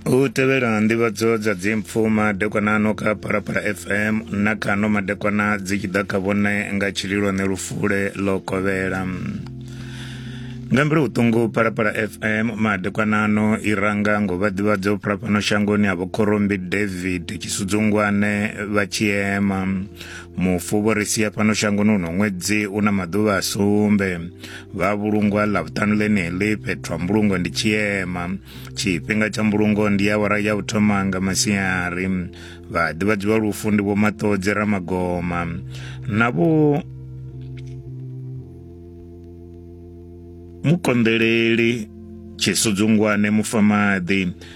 u tevhela nḓivhadzo dza dzimpfu madekwana ano kha phalaphala fm na kha ano madekwana dzi tshi ḓa kha vhone nga tshililwane lufule ḽo kovhela nga mbilu vhuṱungu phalaphala fm madekwana ano i ranga ngo vha ḓivhadza u phalapano shangoni ha vhokhorombi david tshisudzungwane vha tshiema mufu vho ri sia fhano shangoni uno ṅwedzi u na maḓuvha a sumbe vha vhulungwa ḽa vhuṱanu ḽeneḽi fhethu ha mbulungo ndi tshiema tshifhinga tsha mbulungo ndi ya wara ya u thoma nga masiari vha ḓivhadziwa lufu ndi vho maṱodzi ramagoma na vho mukonḓeleli tshisudzungwane mufamaḓi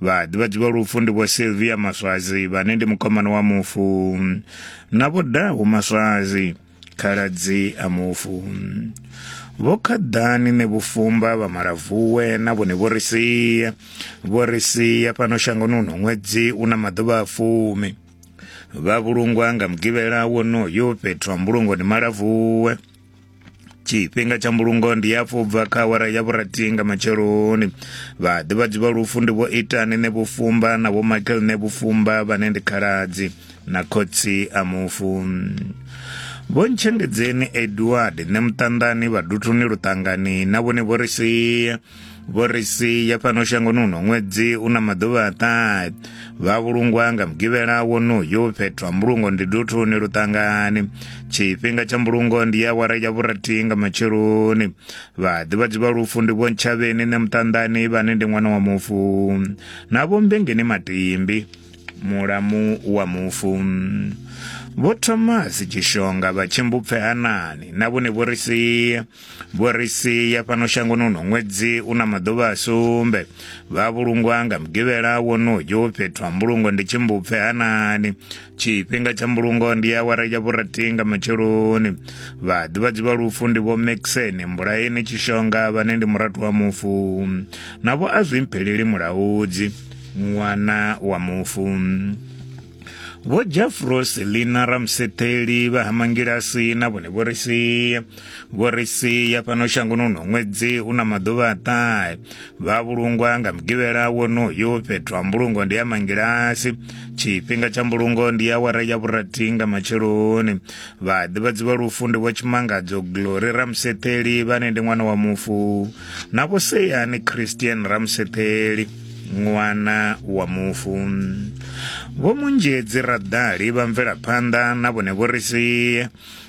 vha ḓivhadzi vha lufu ndi vho silvia maswazi vhane ndi mukomana wa mufu na vho dahu maswazi khaladzi a mufu vho khaḓani ne vhufumba vha malavuwe na vhone vho ri sia vho ri sia fhano shangoni uno ṅwedzi u na maḓuvha a fumi vha vhulungwa nga mugivhela wonoyo fhethu ha mbulungoni malavuwe tshifhinga tsha mbulungo ndi hafhu u bva kha awara ya vhurathi nga matsheloni vhaḓivhadzi vha lufu ndi vho itani ne vhufumba na vho michael ne vhufumba vhane ndi khaladzi na khotsi a mufu vho ntshengedzeni edward ne muṱanḓani vhaduthuni luṱangani na vhone vho ri sia vho ri sia fhano shangoni uno ṅwedzi u na maḓuvha a ṱahe vha vhulungwa nga mugivhela wonoyo fhethu ha mbulungo ndi duthuni luṱangani tshifhinga tsha mbulungo ndi ya wara ya vhurathi nga matsheloni vhaḓivhadzi vha lufu ndi vho ntshavheni ne muṱanḓani vhane ndi ṅwana wa mufu na vho mbengeni matimbi mulamu wa mufu vho thomas tshishonga vha tshimbupfe hanani na vhone vho ri sia Vho ri sia fhano shangoni uno ṅwedzi u na maḓuvha a sumbe vha vhulungwa nga mugivhela wonoyo fhethu ha mbulungo ndi tshimbupfe hanani tshifhinga tsha mbulungo ndi awara ya vhurathi nga matsheloni vhaḓivhadzi vha lufu ndi vho maxen mbulaeni tshishonga vhane ndi murathu wa mufu na vho a zwi mpheleli mulaudzi ṅwana wa mufu vho jafros lina ramsetheli vha ha mangilasi na vhone vho ri sia vho ri sia fhano shangoni uno ṅwedzi u na maḓuvha a ṱahe vha vhulungwa nga mugivhela wonoyo fhethu ha mbulungo ndi ya mangilasi tshifhinga tsha mbulungo ndi ya wara ya vhurathi nga matsheloni vhaḓivhadzi vha lufu ndi vho tshimangadzo glory ramsetheli vhane ndi ṅwana wa mufu na vho seyani christian ramsetheli ṅwana wa mufu vho munzhedzi raḓali vha mvelaphanḓa na vhone vho ri sie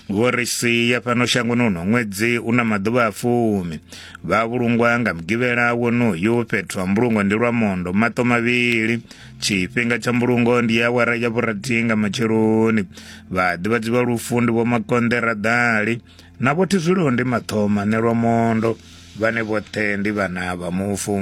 vho ri sia fhano shangoni uno ṅwedzi u na maḓuvha a fumi vha vhulungwa nga mugivhela wonoyu fhethu ha mbulungo ndi lwa mondo maṱo mavhili tshifhinga tsha mbulungo ndi ya awara ya vhurathi nga matsheloni vha ḓivhadzi vha lufu ndi vho makonḓe raḓali na vho thizwilo ndi mathoma nelwa mondo vhane vhoṱhe ndi vhana vha mufu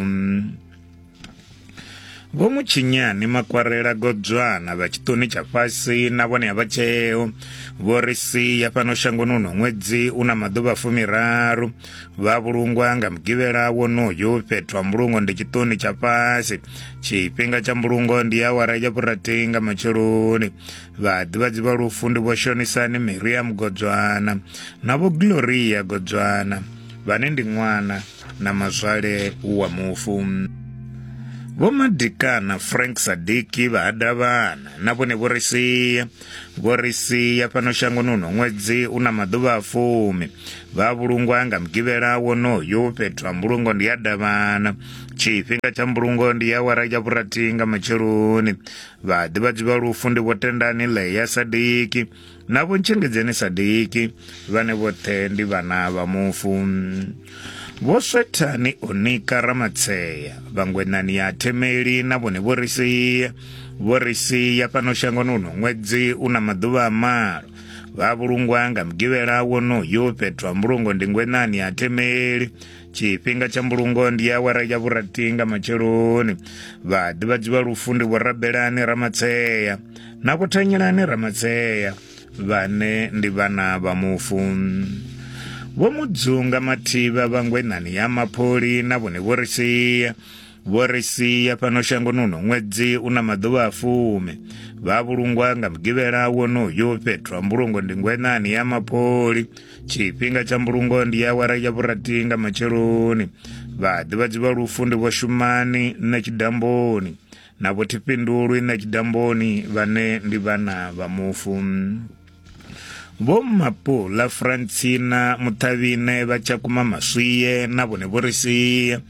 vho mutshinyani makwarela godzwana vha tshiṱoni tsha fhasi na vhone a vha tsheo vho ri sia fhano shangoni uno ṅwedzi u na maḓuvha fumiraru vha vhulungwa nga mugivhela wonoyo fhethu ha mbulungo ndi tshiṱoni tsha fhasi tshifhinga tsha mbulungo ndi awara ya vhurathi nga matsheloni vhaḓivhadzi vha lufu ndi vho shonisani miriam godzwana na vho gloria godzwana vhane ndi ṅwana na mazwale wa mufu vho madikana frank sadiki vha hadavhana na vhone vho ri sia vho ri sia fhano shangoni uno ṅwedzi u na maḓuvha a fumi vha vhulungwa nga mugivhela wonoyo fhethu ha mbulungo ndi ya davhana tshifhinga tsha mbulungo ndi ya wara ya vhurathi nga matsheloni Vhaḓivhadzi vha lufu ndi vho Tendani Leya Sadiki na vho Ntshengedzeni Sadiki vhane vhoṱhe ndi vhana vha mufu. Vho Swethani Onika Ramatseya, Vhangwenani ya Themeli na vhone vho ri sia. Vho ri sia fhano shangoni uno ṅwedzi u na maḓuvha a malo. Vha vhulungwa nga mugivhela wonoyu fhethu ha mbulungo ndi Ngwenani ya Themeli tshifhinga tsha mbulungo ndi awara ya vhurathi nga matsheloni vhaḓivhadzi vha lufu ndi vhorabelani ramatseya na kuthanyelani ramatseya vhane ndi vhana vha mufu vho mudzunga mathivha vhangwenani ya mapholi na vhone vho ri sia vho ri sia fhano shangoni uno ṅwedzi u na maḓuvha a fumi vha vhulungwa nga mugivhela wonoyo fhethu ha mbulungo ndi ngwenani ya mapholi tshifhinga tsha mbulungo ndi awara ya vhurathi nga matsheloni vhaḓivhadzi vha lufu ndi vho shumani na tshidamboni na vho thifhindulwi na tshidamboni vhane ndi vhana vha mufu vho mapula francina muṱhavhine vha tshakhuma maswiye na vhone vho ri sia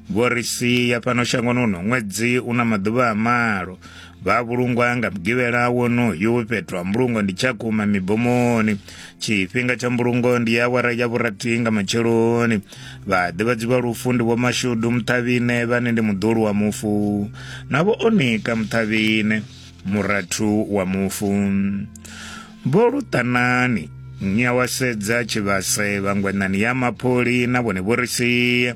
vho ri sia fhano shangoni uno ṅwedzi u na maḓuvha a malo vha vhulungwa nga mugivhela wonoyu fhethu ha mbulungo ndi tshakhuma mibomoni tshifhinga tsha mbulungo ndi ya awara ya vhurathi nga matsheloni vhaḓivhadzi vha lufu ndi vhomashudu muṱhavhine vhane ndi muḓulu wa mufu na vho onika muṱhavhine murathu wa mufu vho luṱanani nyawasedza tshivhase vhangwenani ya mapholi na vhone vho ri sia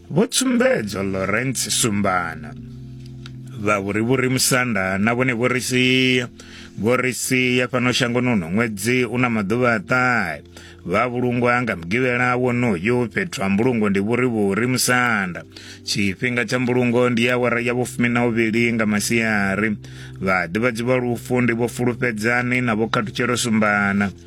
Vho Tsumbedzo Lawrence Sumbana vha vhurivhuri musanda na vhone vho ri sia vho ri sia fhano shangoni uno ṅwedzi u na maḓuvha a ṱahe vha vhulungwa nga mugivhela wonoyu fhethu ha mbulungo ndi vhurivhuri musanda tshifhinga tsha mbulungo ndi awara ya vhufumi na uvhili nga masiari vhaḓivhadzi vha lufu ndi vho fulufhedzani na vho khathutshelo sumbana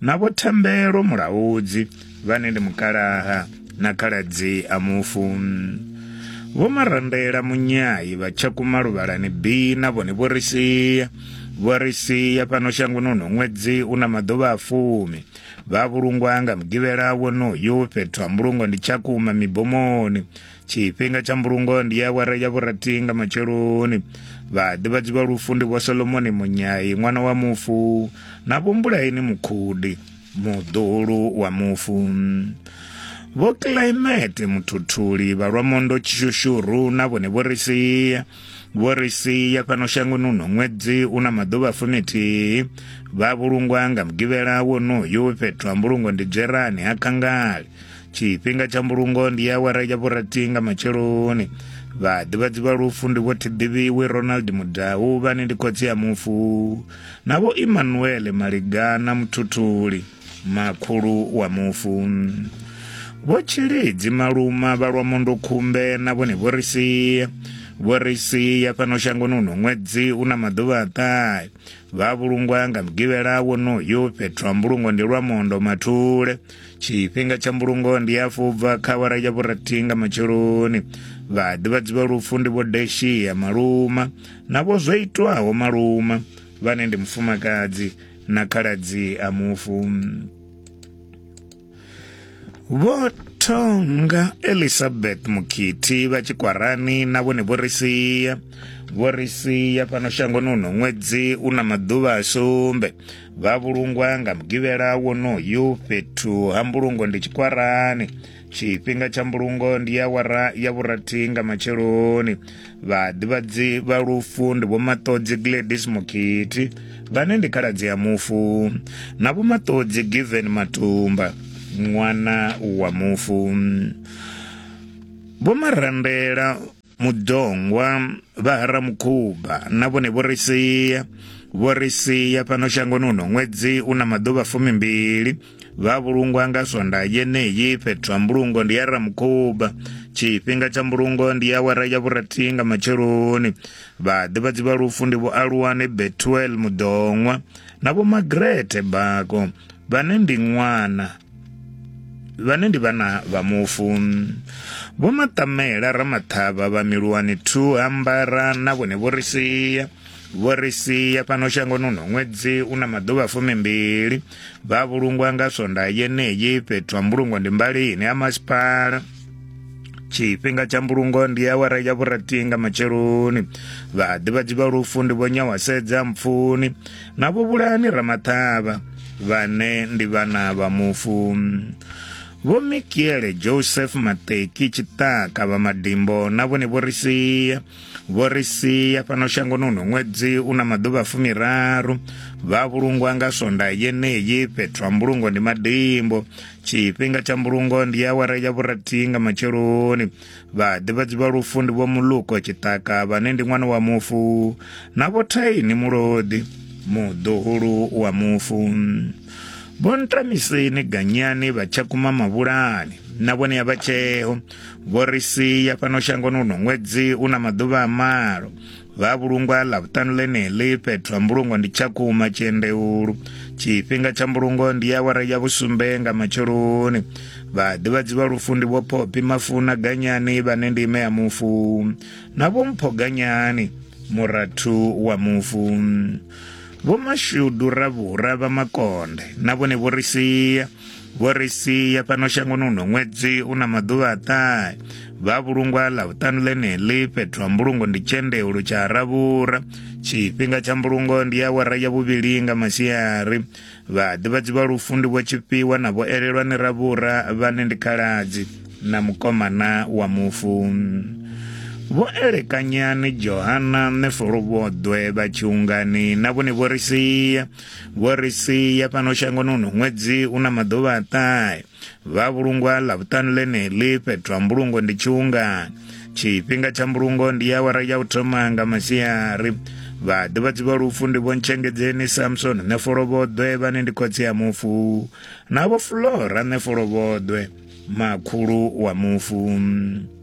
na vho thembelo mulaudzi vhane ndi mukalaha na khaladzi a mufu vho marandela munyayi vha tshakuma luvhalani b na vhone vho ri sia vho ri sia fhano shangoni uno ṅwedzi u na maḓuvha a fumi vha vhulungwa nga mugivhela wonoyu fhethu ha mbulungo ndi tshakuma mibomoni tshifhinga tsha mbulungo ndi awara ya vhurathi nga matsheloni vhaḓivhadzi vha lufu ndi vho solomoni munyai ṅwana wa mufu na vho mbulaini mukhudi muḓulu wa mufu vho climate muthuthuli vha lwamondo tshishushuhru na vhone vho ri sia vho ri sia fhano shangoni uno ṅwedzi u na maḓuvha fumithihi vha vhulungwa nga mugivhela wonoyu fhethu ha mbulungo ndi dzherani ha khangali tshifhinga tsha mbulungo ndi awara ya vhurathi nga matsheloni vhaḓivhadzi vha lufu ndi vho thiḓivhiwe ronald mudau vhane ndi khotsi ya mufu na vho emmanuele maligana muthuthuli makhulu wa mufu vho tshilidzi maluma vha lwa mondo khumbe na vhone vho ri sia vho ri sia fhano shangoni uno ṅwedzi u na maḓuvha a ṱahe vha vhulungwa nga mugivhela wonoyo fhethu ha mbulungo ndi lwa mondo mathule tshifhinga tsha mbulungo ndi afho ubva kha awara ya vhurathi nga matsheloni vhaḓivhadzi vha lufu ndi vho deshiya maluma na vho zwo itwaho maluma vhane ndi mufumakadzi na khaladzi a mufu vho thonga elizabeth mukhithi vha tshikwarani na vhone vho ri sia vho ri sia fhano shangoni uno ṅwedzi u na maḓuvha a sumbe vha vhulungwa nga mugivhela wonoyu fhethu ha mbulungo ndi tshikwarani tshifhinga tsha mbulungo ndi ya wara ya vhurathi nga matsheloni vhaḓivhadzi vha lufu ndi vhomaṱodzi gladys mukhithi vhane ndi khaladzi ya mufu na vhomaṱodzi given matumba ṅwana wa mufu vhomarandela mudongwa vha haramukhuba na vhone vho ri sia vho ri sia fhano shangoni uno ṅwedzi u na maḓuvha fumimbili vha vhulungwa nga swonda yeneyi fhethu ha mbulungo ndi ya ramukhuba tshifhinga tsha mbulungo ndi ya awara ya vhurathi nga matsheloni vhaḓivhadzi vha lufu ndi vho aluwane betuel mudoṅwa na vho magrete bako vhane ndi ṅwana vhane ndi vhana vha mufu vho maṱamela ramaṱhavha vha miluwani 2 ambara na vhone vho ri sia vho ri sia fhano shangoni uno ṅwedzi u na maḓuvha fumimbili vha vhulungwa nga swonda yeneyi fhethu ha mbulungo ndi mbalini ha masipala tshifhinga tsha mbulungo ndi awara ya vhurathi nga matsheloni vhaḓivhadzi vha lufu ndi vho nyawasedza mpfuni na vho vhulani ramaṱhavha vhane ndi vhana vha mufu vho mikiele joseph mateki tshiṱaka vha madimbo na vhone vho ri sia vho ri sia fhano shangoni uno ṅwedzi u na maḓuvha fumiraru vha vhulungwa nga swonda yeneyi fhethu ha mbulungo ndi madimbo tshifhinga tsha mbulungo ndi awara ya vhurathi nga matsheloni vhaḓivhadzi vha lufu ndi vho muluko tshiṱaka vhane ndi ṅwana wa mufu na vho thaini mulodi muḓuhulu wa mufu vho ntamiseni ganyani vha tshakhuma mavhulani na vhone ya vha tsheo vho ri sia fhano shangoni uno ṅwedzi u na maḓuvha a malo vha a vhulungwa ḽavhuṱanu ḽeneḽi fhethu ha mbulungo ndi tshakhuma tshiendeulu tshifhinga tsha mbulungo ndi awara ya vhusumbe nga matsheloni vhaḓivhadzi vha lufu ndi vho phopi mafuna ganyani vhane ndi ime ya mufu na vho mpho ganyani murathu wa mufu vho mashudu ravhura vha makonde na vhone vho ri sia Vho ri sia fhano shangoni huno ṅwedzi u na maḓuvha a ṱahe vha vhulungwa ḽa vhuṱanu ḽeneḽi fhethu ha mbulungo ndi tshendeulo tsha ravhura tshifhinga tsha mbulungo ndi ya wara ya vhuvhili nga masiari vhaḓivhadzi vha lufu ndi vho tshifhiwa na vho elelwa ni ravhura vhane ndi khaladzi na mukomana wa mufu vho elekanyani johana nefolo vhoḓwe vha tshiungani na vhone vho ri sia vho ri sia fhano shangoni uno ṅwedzi u na maḓuvha a ṱahe vha vhulungwa ḽa vhuṱanu ḽeneḽi fhethu ha mbulungo ndi tshiungani tshifhinga tsha mbulungo ndi awara ya u thoma nga masiari vhaḓivhadzi vha lufu ndi vhontshengedzeni samson ṋefolovhoḓwe vhane ndi khotsi ya mufu na vho flora ṋefolovhoḓwe makhulu wa mufu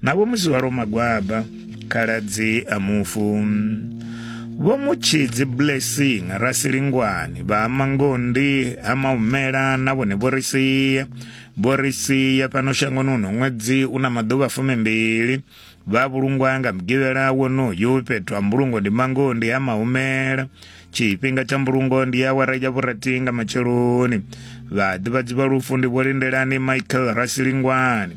Na vho Muzwaro Magwaba, khaladzi a mufu. Vho Mutshidzi Blessing Rasilingwani vha Mangondi ha Maumela na vhone vho ri sia. Vho ri sia fhano shangoni uno ṅwedzi u na maḓuvha fumimbili. Vha vhulungwa nga mugivhela wonoyu fhethu ha mbulungo ndi Mangondi ha Maumela. Tshifhinga tsha mbulungo ndi awara ya vhurathi nga matsheloni. Vhaḓivhadzi vha lufu ndi Vho Lindelani Michael Rasilingwani.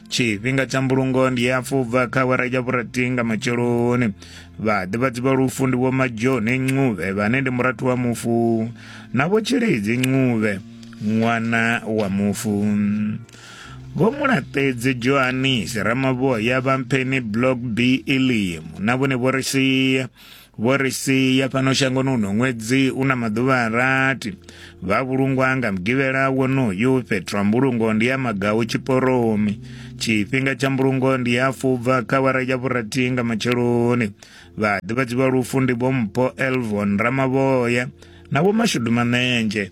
tshifhinga tsha mbulungo ndi ya fubva kha wera ya vhurathi nga matsheloni vhaḓivhadzi vha lufu ndi vho majoni ncuvhe vhane ndi murathu wa mufu na vho tshilidzi ncuvhe ṅwana wa mufu vho mulaṱedzi johanisi ramavhoya vha mpheni block b elimu na vhone vho ri sia Vho ri sia fhano shangoni uno ṅwedzi u na maḓuvha a rathi. Vha vhulungwa nga mugivhela wonoyu fhethu ha mbulungo ndi ya Magau Tshiporomi. Tshifhinga tsha mbulungo ndi ya fubva kha wara ya vhurathi nga matsheloni. Vha ḓivhadzi vha lufu ndi Vho Mpho Elvon Ramavhoya na Vho Mashudu Manenzhe.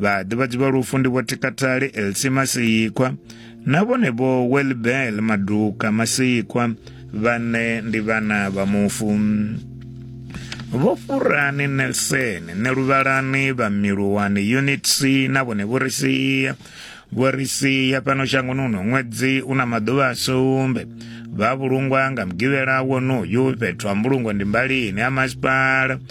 vhaḓivhadzi vha lufu ndi vho tikatali elsi masikwa na vhone vho welbel maduka masikwa vhane ndi vhana vha mufu vho furani nelson ne luvhalani vha miluwani unit c na vhone vho ri sia vho ri sia fhano shangoni uno ṅwedzi u na maḓuvha a sumbe vha vhulungwa nga mugivhela wonoyu fhethu ha mbulungo ndi mbalini ha masipala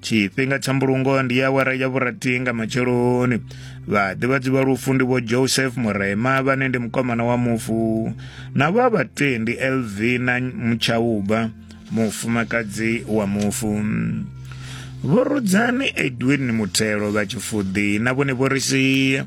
tshifhinga tsha mbulungo ndi ya awara ya vhurathi nga matsheloni vhaḓivhadzi vha lufu ndi vho joseph murema vhane ndi mukomana wa mufu na vha vha 20 elvina mutshauba mufumakadzi wa mufu vho rudzani edwin muthelo vha tshifuḓi na vhone vho ri sia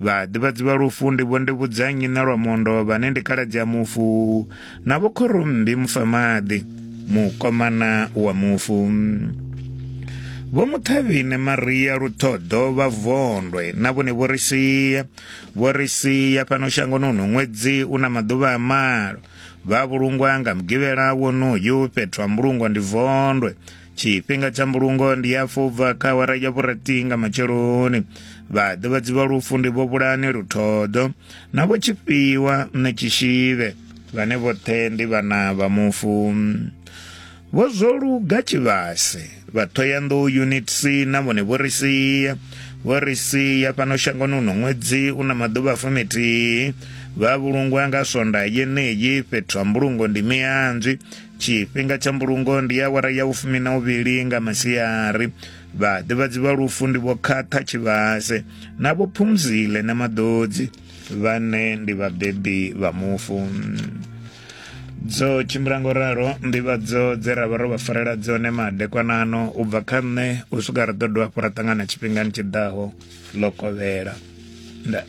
vhaḓivhadzi vha lufu ndi vho ndivhudzanyi na lwa mondo vhane ndi kaladzi ya mufu na vho khorombi mufamaḓi mukomana wa mufu vho muthavhine maria luthoḓo vha vondwe na vhone vho ri sia vho ri sia fhano shangoni uno ṅwedzi u na maḓuvha a malo vha vhulungwa nga mugivhela wonoyu fhethu ha mbulungwa ndi vondwe tshifhinga tsha mbulungo ndi ya fubva kha awara ya vhurathi nga matsheloni vhaḓivhadzi vha lufu ndi vho vhulani luthodo na vho tshifhiwa na tshishivhe vhane vhoṱhe ndi vhana vha mufu vho zwo luga tshivhase vha thoyanḓou unit c na vhone vho ri sia vho ri sia fhano shangoni uno ṅwedzi u na maḓuvha fumithihi vha vhulungwa nga swonda yeneyi fhethu ha mbulungo ndi mianzwi Tshifhinga tsha mbulungo ndi awara ya vhufumi na uvhili nga masiari. Vhaḓivhadzi vha lufu ndi vho Khatha Tshivhase na vho Phumzile na Maḓodzi vhane ndi vhabebi vha mufu dzo tshimbila ngo ralo nḓivhadzo dze ra vha ro vha farela dzone madekwanano u bva kha nṋe u swika ri ḓo dovha hafhu ra ṱangana tshifhingani tshi ḓaho ḽo kovhela nda